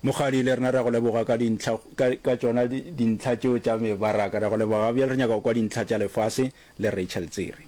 Mokgadi, le rena re a go leboga ka dintlha, ka, ka tšona di, dintlha tšeo tša mebaraka. Re a go leboga ga bjale. Re nyaka go kwa dintlha tša lefase le Rachel Tsiri.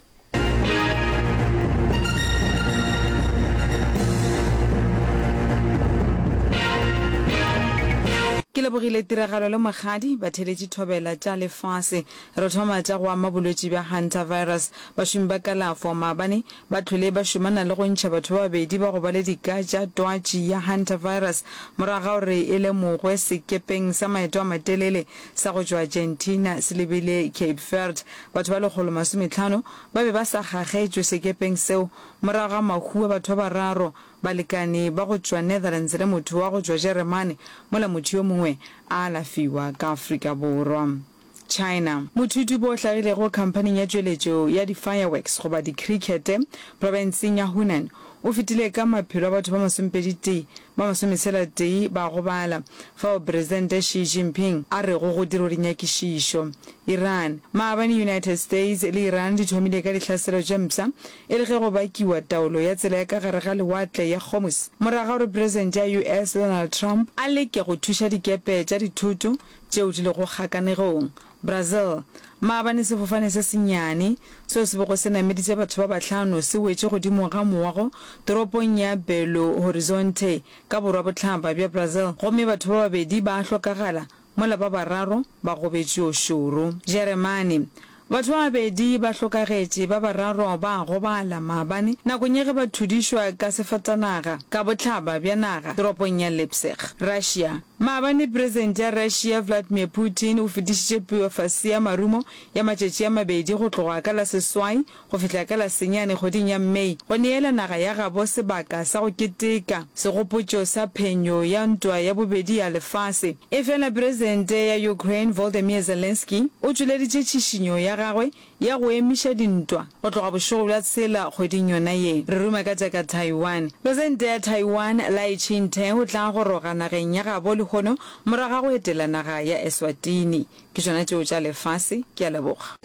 Ke lebogile tiragalo le mokgadi. Batheeletši thobela tša lefase. Re thoma tša go ama bolwetši bja Hantavirus. Bašomi ba kalafo maabane ba hlwele ba šomana le go ntšha batho ba babedi ba go ba le dika tša twatši ya hantavirus morago ga gore e lemogwe sekepeng sa maeto a matelele sa go tšwa Argentina se lebile Cape Verde. Batho ba lekgolo masometlhano ba be ba sa gagetšwe sekepeng seo morago ga mahu a batho ba bararo, balekane ba go tšwa Netherlands le motho wa go tšwa Jeremane, mola motho yo mongwe a alafiwa ka Afrika Borwa. China. Mothutupo o hlagilego khamphaning ya tšweletšo ya di-fireworks goba dikhirikhete profenseng ya Hunan o fetile ka maphelo a batho ba masomepeditee ba masometshela-tee ba gobala fao Presidente Xi Jinping a rego go dirwe dinyakišišo. Iran. Maabane United States le Iran di thomile ka dihlaselo tše mpsha e le ge go bakiwa taolo ya tsela ya ka gare ga lewatle ya Hormuz morago ga gore Presidente ya US Donald Trump a leke go thuša dikepe tša dithoto tšeo di lego kgakanegong. Brazil, Maabane sefofane se senyane, seo se bego se nameditše batho ba bahlano se wetše godimo ga mowa go toropong ya Belo Horizonte ka borwa-bohlaba bja Brazil gomme batho ba babedi ba hlokagala mola ba bararo ba gobetšwe šoro. Jeremane, Batho ba babedi ba hlokagetše, ba bararo ba a gobala maabane nakong ya ge ba thudišwa ka sefatanaga ka bohlaba bja naga toropong ya Leipzig, Russia. Maabane Presidente ya Russia Vladimir Putin o fetišitše pueface ya marumo ya matšatši a mabedi go tloga ka la seswai go fihla ka la senyane kgweding ya May go neela naga ya gabo sebaka sa go keteka segopotšo sa phenyo ya ntwa ya bobedi ya lefase. Efela Presente ya Ukraine Voldemir Zelensky o tšweleditše tšhišinyo ya gagwe ya go emiša dintwa go tloga bošego bja tshela kgweding yona ye. Re ruma ka tša ka Taiwan. Presente ya Taiwan Lai Ching-te o tla goroga nageng ya gabo lehono morago ga go etela naga ya Eswatini. Ke tšona tšeo tša lefase. Ke a leboga.